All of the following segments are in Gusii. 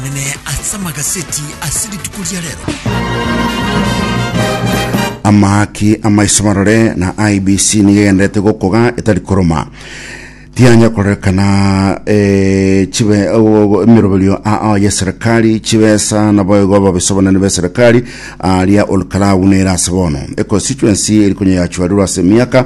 Omonene ase amagaseti ase rituko ria rero. Amaki amaiso marore na IBC nigo egenderete gokoga etari koroma tianya korekana eh, chibe oh, emiroberio ao ya serikali chibesa na boigo ababiso banene be serikali aria olkalau nere ase bono econstituency eri konya yachwarirwe ase emiaka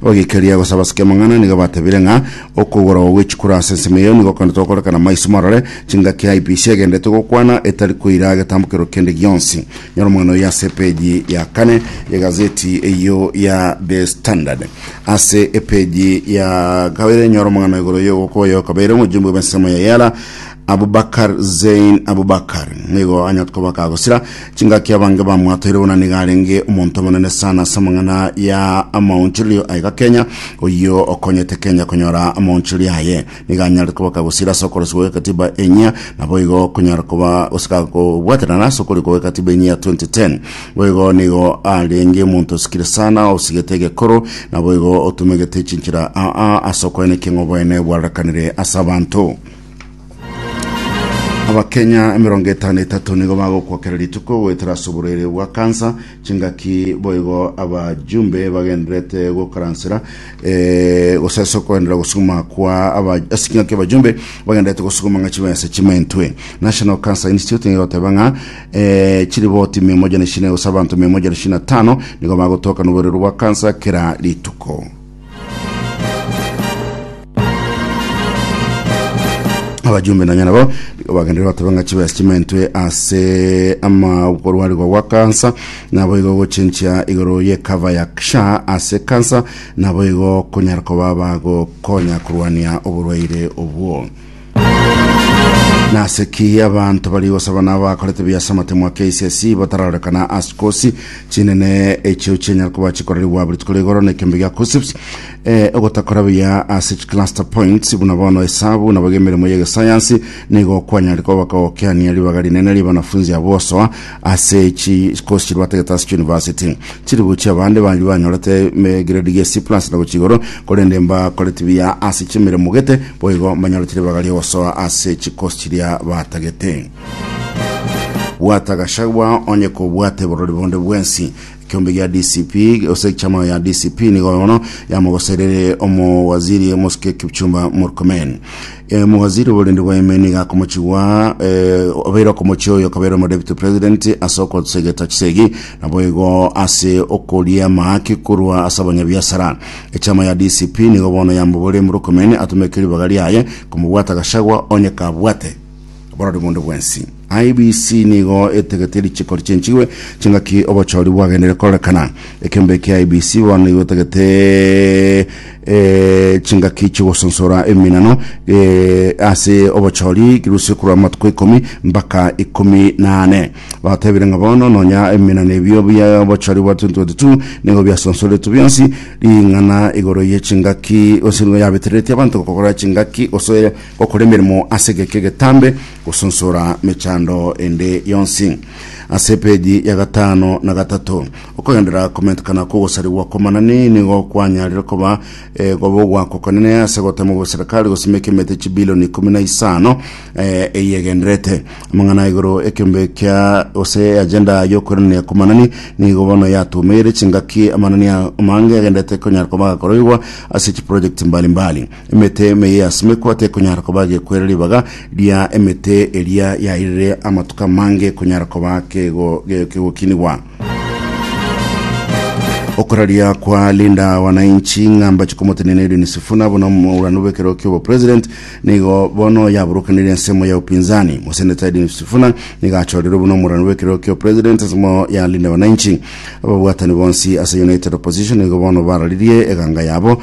Abagekeria gose abasikemang'ana nigo batebire ng'a okogorogwa gwe chikura ase ensemo eyio nigo kende togokorekana maiso marore chingaki IEBC egenderete gokwana etari koira agetambokero kende gionsi. Nyora omogano oyio ase epeji ya kane ye gazeti eyio ya The Standard. Ase epeji ya kabere nyora omogano igoro y'ogokoa oyo okabeire omochumbi bw'ensemo ya Yala. Abubakar Zein Abubakar nigo anyot koba kagosira chingaki abange bamwatoire buna niga arenge omonto omonene sana ase amang'ana ya amaonchorerio aye gakenya oyio okonyete Kenya konyora amaonchorerio aye niga anyare koba kagosira ase okorosibwa gw'ekatiba enyia nabo igo okonyara koba gosika kobwaterana ase okorikwa gw'ekatiba enyia ya 2010 boigo nigo arenge omonto osikire sana osigete egekoro nabo igo otumegete chinchera aa ase okoenekia ng'a oboene bwarorekanire ase abanto abakenya emerongo etano etato nigo bagokwa kera rituko goetera ase oborwaire bwa kansa chingaki boigo abajumbe bagenderete gokaransera eh, gose ase okoenderera gosuguma kwa aba- ase chingaki abajumbe bagenderete gosuguma ng'a chibense chimentwe national cancer institute nigo egoteba ng'a eh, chiriboti mia moja na ishirini gose abanto mia moja na ishirini na tano nigo bagotoka noborero bwa kansa kera rituko abajumbe nonya nabo nigo bagenderire bateba ng'a chibesa chimentwe ase ama okorwarigwa gwa kansa nabo igo gochinchia igoro ye cover ya sha ase kansa nabo igo konyara koba bagokonya korwania oborwaire obwo Nase ki abanto bari gosaba na abakorete biase amatemwa KCSE batararorekana ase kosi chinene echio chinyara koba chikorerigwa buri tuko rigoro na ekembe gia KUSSIPS eh, ogotakora buya ase chicluster points buna bono esabu nabo gemeremo y'egesayansi nigo kwanyarire koba bakagokeania ribaga rinene ria banafunzi abo osoa ase chikosi chirwate getasi chuniversity chiri gochia abande bari banyorete grade gie C plus na gochia igoro korende mbakoreti buya ase chimiremo gete boigo mbanyore chiribaga riogosoa ase chikosi chiria batagete bwata gashagwa onye kobwate borori bonde bwensi kiombe gia DCP ose chama ya DCP nigo bono yamogoserere omo waziri Mosike Kipchumba Murkomen Eh, Mowaziri oborende bwa Yemeni gakomochigwa eh, obeire okomochia oyo okabeire omo deputy president ase okosegeta chisegi naboigo ase okoria amahaki korwa ase abanyabiasara. Echama ya DCP nigo bono yambobore Murkomen atumeke ribaga riaye komobwata Gachagua onye kabwate. Oborori bw'onde bwensi. IEBC nigo etegetie richiko richenchigwe chingaki obochori bwagendeire kororekana. Ekembe ekia IEBC bono nigo etagete eh, chingaki chigosonsora eminano eh, ase obochori kirusie korwa amatuko ikomi mpaka ikomi na ane. Batebire ng'a bono nonya eminano ebio bia obochori bwa 2022 nigo biasonsoretwe bionsi ring'ana igoro ye chingaki gose nigo yabetereretie abanto gokora chingaki gose Gokora emeremo ase egeka egetambe, gosunsura mechando ende yonsi. Ase epeji ya gatano na gatato, okogenderera komentekana kw'ogosarigwa kw'amanani nigo kwanyarire koba egobogwa kokonene ase gotemwa gweserikari gosimeka emete chibilioni ikomi na isano eh, eyegenderete. Amang'ana igoro ekeombe kia gose agenda y'okoiranania kw'amanani nigo bono yatumeire chingaki amanani amange agenderete konyara koba agakoroigwa ase chiprojekti mbali mbali. Emete ime y'easimekwa tekonyara koba gekwera ribaga ria emete eria yairire amatuko amange ekonyara koba kego- ge- kegokinigwa. Okoraria kwa Linda Wananchi ng'a mbache komotenena Edwin Sifuna buna omorwani bw'ekero ki'obopresident nigo bono yaburukanire ensemo ya upinzani. Moseneta Edwin Sifuna nigo achorirwe buna omorwani bw'ekero ki'opresident ensemo ya Linda Wananchi. Ababwatani bonsi ase United Opposition nigo bono bararirie eganga yabo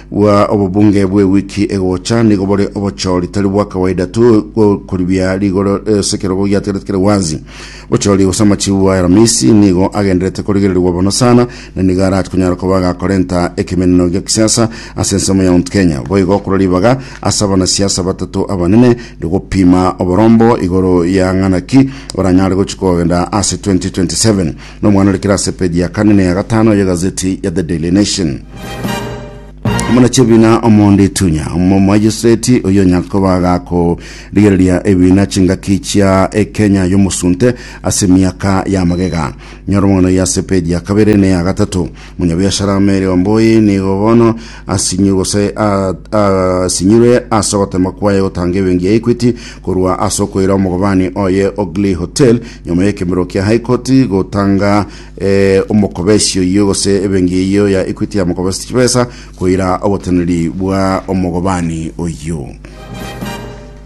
Bua obobunge bw'ewiki egocha nigo bore obochori tari bwa kawaida tu bw'okoribia rigoro ase ekerogo giatigarete kere gwansi. Bochori gose amachibu a Aramisi nigo agenderete korigererigwa bono sana na nigo arati konyara koba agakorenta ekemeneno gia kisiasa ase ensemo ya Mount Kenya. Boigo korwa ribaga ase abanasiasa batato abanene rigopima oborombo igoro ya ng'ana ki baranyare gochia kogenda ase 2027. nomwana ore kera ase peji ya kane na ya gatano y'egazeti ya The Daily Nation. Omona chebina omonde itunya omomajeseti oyo nyakoba gako rigereria ebina chingaki chia ekenya yomosunte ase miaka ya magega nyora omwana oyo ase peji ya kabere ne ya gatato Omonyabiashara ime eriomba oye nigo bono asinyirwe gose a- a- asinyirwe ase ogoteema kwaye gotanga ebenki ya Equity korwa ase okoira omogobani oye o Glee Hotel nyuma y'ekemerero kia High Court gotanga eh, omokobesi oyio gose ebenki eyio ya Equity yamokobesete chibesa koira oboteneri bwa omogobani oyio.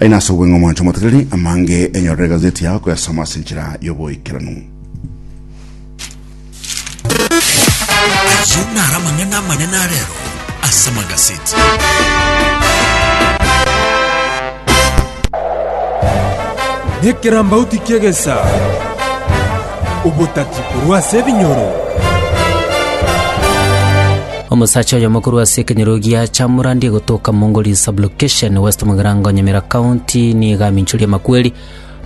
Aye nase obong'aini bw'omwancho omoteteri, amange enyorere egazeti yao koyasoma ase enchera y'oboikeranu. Ayio naro amang'ana amanene a rero ase magaseti. Nekerambauti ki'egesaa. Obotati korwa ase ebinyoro. Omosacha oyomo korwa ase ekenyoro gia Chamurandi egotoka Mongoli Sublocation, West Mugirango, Nyamira County, nigo aminchoria amakweri.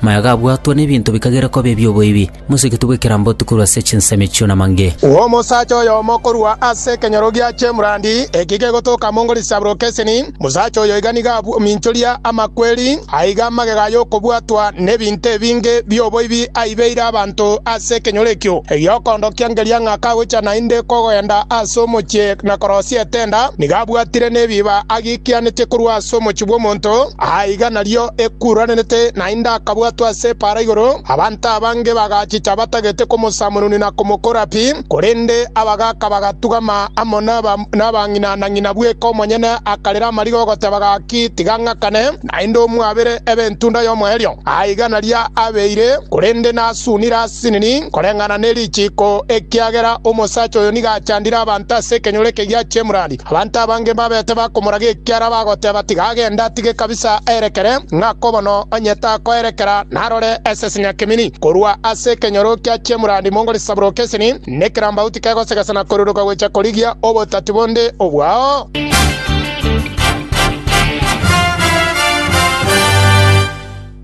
Maya gabwatwa n'ebinto bikagera koba ebi'oboibi. Moseketu bw'ekeramboti korwa ase chinsemo echio namange. Omosacha oyomo korwa ase ekenyoro gia Chamurandi ekio kegotoka Mongoli Sublocation, Omosacha oyo iga nigo abwominchoria amakweri, aiga amagega y'okobwatwa nebinto ebinge bi'oboibi aibeire abanto ase ekenyoro ekio. Egiokondokia ngeria ng'a kagocha naende kogenda ase omochie na korosia etenda, nigo abwatire nebiiba agiikianete korwa ase omochie bw'omonto, aiga nario ekuuranete naende akabwatwa ase epaara igoro. Abanto abange bagachicha batagete komosamununi na komokora pi, korende abagaka bagatugama amo nabang'ina na Ng'ina bweka omonyene akarera amariga ogoteba gaki, Tiga ng'akane, naende omwabere ebe entunda y'omoerio. Aiga naria abeire, korende nasunire asinini koreng'ana ne richiiko, ekiagera omosacha oyo nigo achandire abanto ase ekenyoro eke gia chemurandi. Abanto abange mbabete bakomoraga ekiara bagoteba, Tiga agende atige kabisa aerekere, ng'ako bono onye takoerekera narore ase senyakemini korwa ase ekenyoro kia chemurandi mongo risabroke esini. Nekerambagu tikegosegesa na koruruka gocha korigia obotati bonde obwao.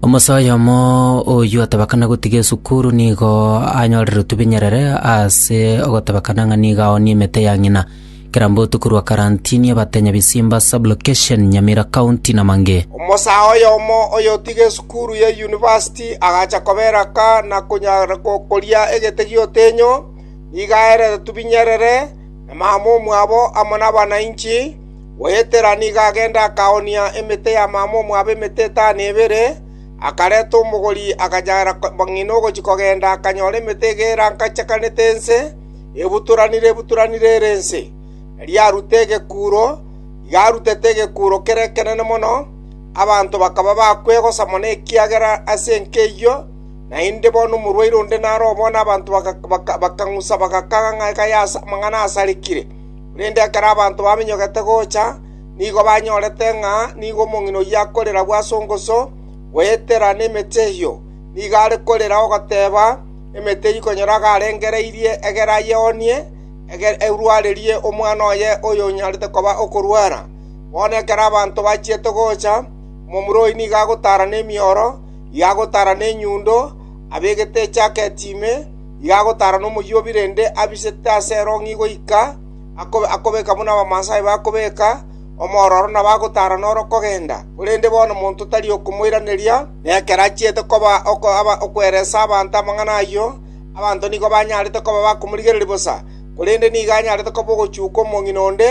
Omosa oyomo oyio otabakana gotiga esukuru nigo anyorire otubinyerere ase ogotabakana ng'a nigo aoonie emete ya ng'ina. Kera mbotuko rwa karantini abatenya bisimba sub-location Nyamira County namange. Omosaa oyomo oyotiga esukuru ye university agacha koberaka na konyara gokoria egete gi'otenyo, nigo aerete tubinyerere, na mama omwabo amo nabanainchi. Goetera nigo agenda akaoonia emete ya mama omwabo emete etano ebere, akareta omogori akanyara bang'ina ogochia kogenda akanyora emete egera nkachakanete ense. Ebutoranire, ebutoranire ere ense, erio aruta egekuro. Iga arutete egekuro kere ekenene mono, abanto bakaba bakwegosa mono ekiagera ase enka eyio naende bono omorwaire onde naro obo na abanto bakang'usa bagakaga ng'a iga y'aase amang'ana asarekire. Korende ekero abanto bamenyogete gocha nigo banyorete ng'a nigo omong'ina oyio akorera bw'asongoso, goetera nemete eyio nigo are korera ogoteeba, Emete eyio ikonyoraga arengereirie egere ayeoonie, egere erwarerie omwana oye oyonyarete koba okorwara. Bono ekero abanto bachiete gocha, omomura oyio nigo agotaara nemioro, igo agotaara nenyundo, abegete ejaketi ime, igo agotaara nomoyuobi rende abisete ase erong'i goika akobe akobeka buna Abamaasai bakobeka, omororo nabo agotaara noro kogenda. Korende bono monto tari okomoiraneria. Nekero achiete koba okoereesa abanto amang'ana ayio, abanto nigo banyarete koba bakomorigereria bosa, korende nigo anyarete koba ogochuka omong'ina onde,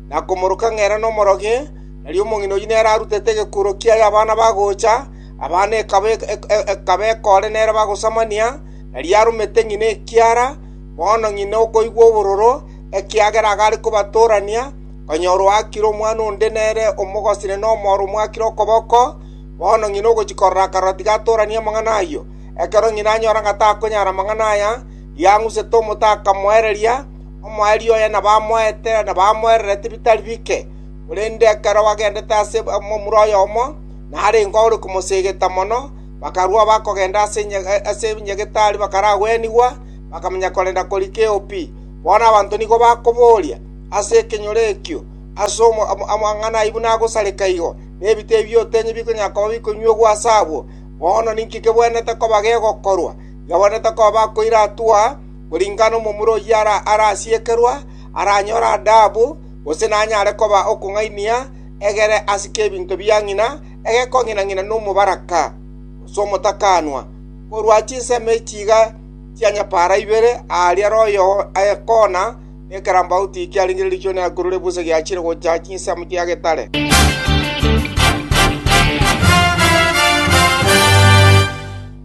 na komoroka ng'a ere nomorogi, nario omong'ina oyio nere arutete egekuro kiaye abana bagocha, abana ekaba ekore nere bagosamania, nario aromete ng'ina ekiara, bono ng'ina okoigwa obororo, ekiagera iga are kobatorania, konyora oakire omwana onde nere omogosire nomooro omoakire okoboko, Bono ng'ina ogochia korora akarora tiga atooranie amang'ana ayio. Ekero ng'ina anyora ng'a takonyara amang'ana aya, yang'usete omote akamoereria, omoerio oye na bamoete na bamoererete bitari bike. Korende ekero bagendete ase omomura oyomo, narenge ore komosegeta mono, bakarua bakogenda ase enyegetari bakaragwenigwa, bakamanya korenda koria keopi. Bono abanto nigo bakoboria ase ekenyoro ekio, Ase amang'ana ayio buna agosareka igo? nebito ebi otenye bikonyara koba bikonywegwa ase abwo, bono ninki kebwenerete koba gegokorwa? Yabwenerete koba bakoiratua koringana nomomura oyio arasiekerwa, aranyore adaabu, gose nanyare koba okong'ainia egere ase kebinto bia ng'ina egekong'ina-ng'ina nomobaraka, gose omotakanwa, korwa chinsemo echi iga chia nyapara ibere, aaria royo koona, Ekerambauti kiaringereirichwe neakurure bwase giachire gocha chinsamu chia getare.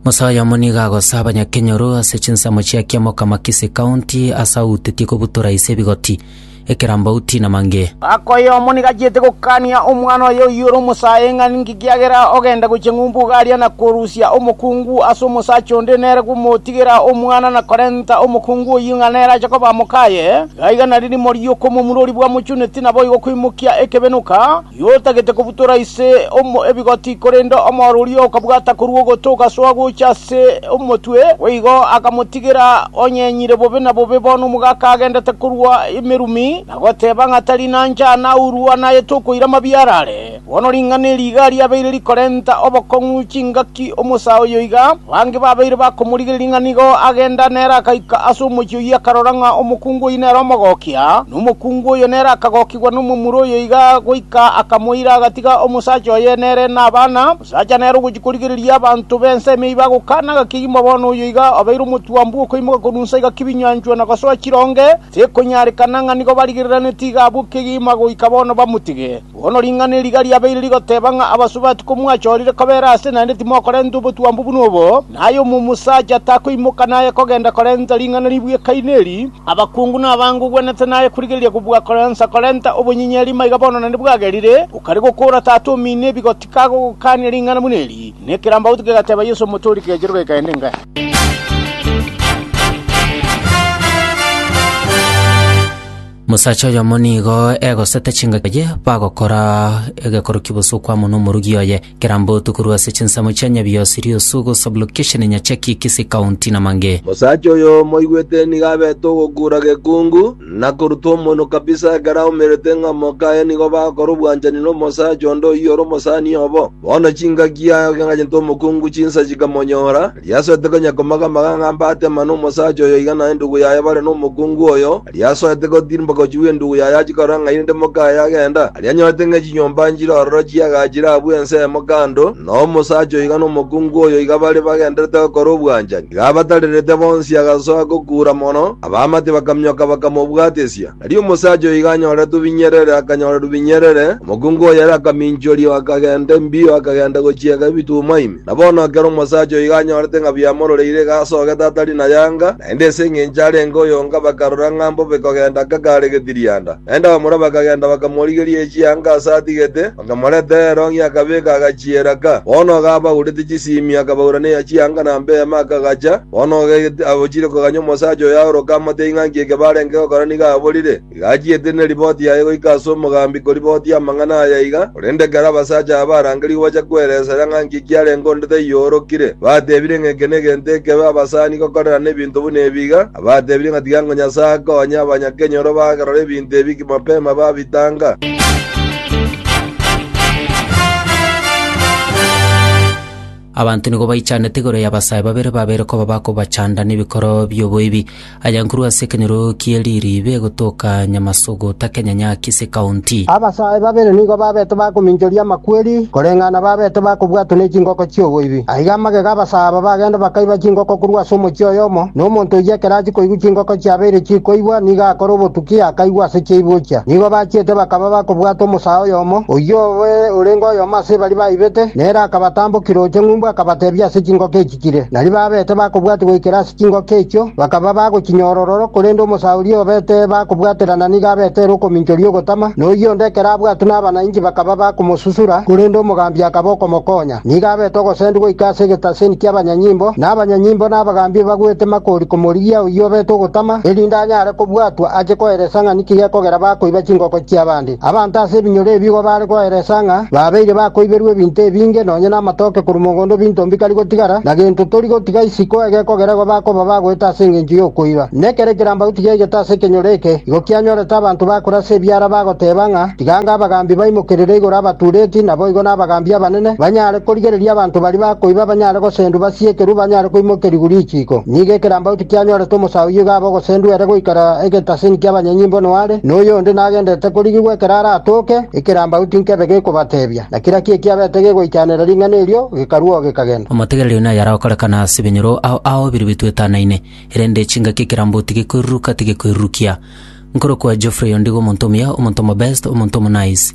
Musa oyomo nigo agosa abanyakenyoru ase chinsemo chia kiamokama Kisii County ase autetie kobutora ise ebigoti, ekerambauti na mange. Ng'aka oyomo nigo achiete gokania omwana oye oyiore omosae ng'a ninki Ekiagera ogenda gochia ng'umbu igaria na korusia omokungu ase omosacha onde nere komotigera omwana na korenta omokungu oyio ng'a nere ache koba mokaye, iga iga nari rimo ri'okomomura oria bwamochuneti naboigo koimokia ekebenuka, giotagetie kobutora ise omo ebigoti korende omoro oria okabwata korwa ogoto ogasoa gocha ase omotwe, boigo akamotigera onyenyire bobe na bobe bono omogaka agendete korwa emerumi, na goteba ng'a tari nancha naurwa naye tokoira mabiarare. Bono ring'ana eri iga riabeire rikorenta obokong'u chingaki omosaa oyo iga, abange babeire bakomorigereria ng'a nigo agenda nere agaika ase omochie oyio akarora ng'a omokungu oyio nere omogokia, na omokungu oyo nere akagokigwa nomomura oyo iga goika akamoira agatiga omosacha oye nere nabana, omosacha nere ogochia korigereria abanto b'ense emeyio bagokana ng'a kegima bono oyo iga obeire omotwambu okoimoka korwa nsa iga kebinyanchwa na gosoa chironge, tekonyarekana ng'a nigo barigereraneti iga abwo kegima goika bono bamotige. Bono ring'ana eriga riabeire rigoteba ng'a abasubati komwachorire kobera aase naende timokorenta obotwambu buna obo, na aye omosacha takoimoka naye kogenda korenta ring'ana ribwekaine eri, abakungu na abange ogwenerete naye korigereria kobua koransa korenta obonyinyeri maiga bono naende bwagerire, okaria gokoora tata omino ebigo tikagogokania ring'ana buna eri. Na ekerambaoto kegateba Yeso omotoori kegechire goikaine ingae. Mosacha oyomo nigo egosete chingaki baye bagokora egekoro kibosa okwamo nomorugi oye kerambe otuko rwa ase chinsemo chia Nyabiosi, Riosugu, Sub-location Nyacheki, Kisii County na mangĩ. Mosacha oyo moigwete nigo abete ogokura gekungu, na koruta omonwa kabisa ekero aumerete ng'a moka aye nigo bagokora obwanchani nomosacha onde oyio ore omosani obo. Bono chingaki aye agachete omokungu chinsa chikamonyora, riasoete konya komaga-maga ng'a mbate mana omosacha oyo iga na endugu yaye bare nomokungu oyo, Aria asoete gotiiri mpaka ochie bw'endugu yaye achie korora ng'ai rinde mokaye agenda. Aria anyorete ng'a chinyomba nchire ororo chi'egaa chire abwo ensemo kando, na omosacha oiga na omokungu oyoiga bare bagendererete gokora obwanchani. Iga abatarerete bonsi agasoa gokuura mono, abaamate bakaminyoka bakamobwatisia. Aria omosacha oiga anyorete obinyerere akanyorerwa binyerere, omokungu oyere akaminchoria akagenda embio akagenda gochiega ebitumwa ime. Na bono ekero omosacha oigo anyorete ng'a biamororeire iga asogete atari na yanga, naende ase engencho arenge oyonga, bakarora ng'a mbobe kogenda kagare getirianda. Naende abamura bakagenda bakamorigeria echiyanga ase atigete, bakamoreta ero ng'ia akabeka agachiera ka. Bono iga abaurete chisiimi akabaura neya chiyanga na mbeema akagacha. Bono iga abo chire koganya omosacha oyo aoroke amotebie ng'a nki eke barenge gokora nigo aborire. Rigachiete ne riboti yaye goika ase omogambi koribotia amang'ana aya aiga, korende ekero abasacha aba barangerigwe bacha kweresera ng'a nki kiarenge onde taiyoorokire, batebire ng'a eke negento ekebe abasani gokorerana ebinto buna ebi iga, abatebire ng'a tiga ngo Nyasae akonye abanyakenyoro bagerora ebinto ebi mapema babitanga. Abanto nigo baichanete igoro y'abasae babere babeire koba bakobachanda nebikoro bi'oboibi. Ayankorwa ase ekenyoro kie ririibe egotoka Nyamasogo takenyanya Kisii County. Abasaae babere nigo babete bakominchoria amakweri koreng'ana na babete bakobwatwa ne chingoko chi'oboibi. Aiga amagega abasaa aba bagenda bakaiba chingoko korwa ase omochie oyomo, na omonto oyio ekero achia koigwa chingoko chiabeire chikoibwa nigo akora obotuki akaigwa ase chiaibwa ochia. Nigo bachiete bakaba bakobwata omosaa oyomo, oyio oye orenge oyomo ase baria baibete, nere akabatambokera oche ng'umbu akabatebia ase chingoko echi. baikire. Nario babete bakobwatia goikera ase chingoko echio, bakaba bagochinyora ororo, korende omosaa oria obete bakobwaterana nigo abete ere okominchoria ogotama, na oyio onde ekero abwatwe nabana inche bakaba bakomosusura, korende omogambi akaba okomokonya. Nigo abete ogosendi goika ase egetaseni ki'abanyanyimbo, na abanyanyimbo na abagambi ebagwete makori komorigia oyio obete ogotama, erinde anyare kobwatwa ache koeresa ng'a niki gekogera bakoiba chingoko chi'abande. Abanto ase ebinyoro ebi igo baare koeresa ng'a babeire bakoiberwa ebinto ebinge, nonya namatooke korwa mogondo binto mbikari gotigara, na gento tori gotiga isiko egekogera igo bakoba bagoeta ase engencho y'okoiba. Nekero ekeramba gotiga egete ase ekenyoro eke, igo kianyorete abanto bakore ase ebiara bagoteba ng'a tiganga abagambi baimokerere igoro abatureti, naboigo nabagambi abanene, banyare korigereria abanto baria bakoiba banyare gosendwa basiekerwe banyare koimokerigwa richiiko. Nigo ekeramba Tianyorete omosae oyio iga abe ogosendwa ere goikera egetasini ki'abanyanyimbo noare, na oyonde nagenderete korigigwa ekero aratooke, ekerambagu tinkebe gekobatebia, na kera kie kiabete gegoichanera ring'ana erio, gekarua oo gekagenda. Omotegereri oino ayare okorekana ase ebinyoro ao aobirio bitoetanaine, erende chingaki ekerambo tigekoiruruka tigekoirurukia. Nkorokwa Geoffrey ondigo omonto omuya, omonto omobest, omonto omonice.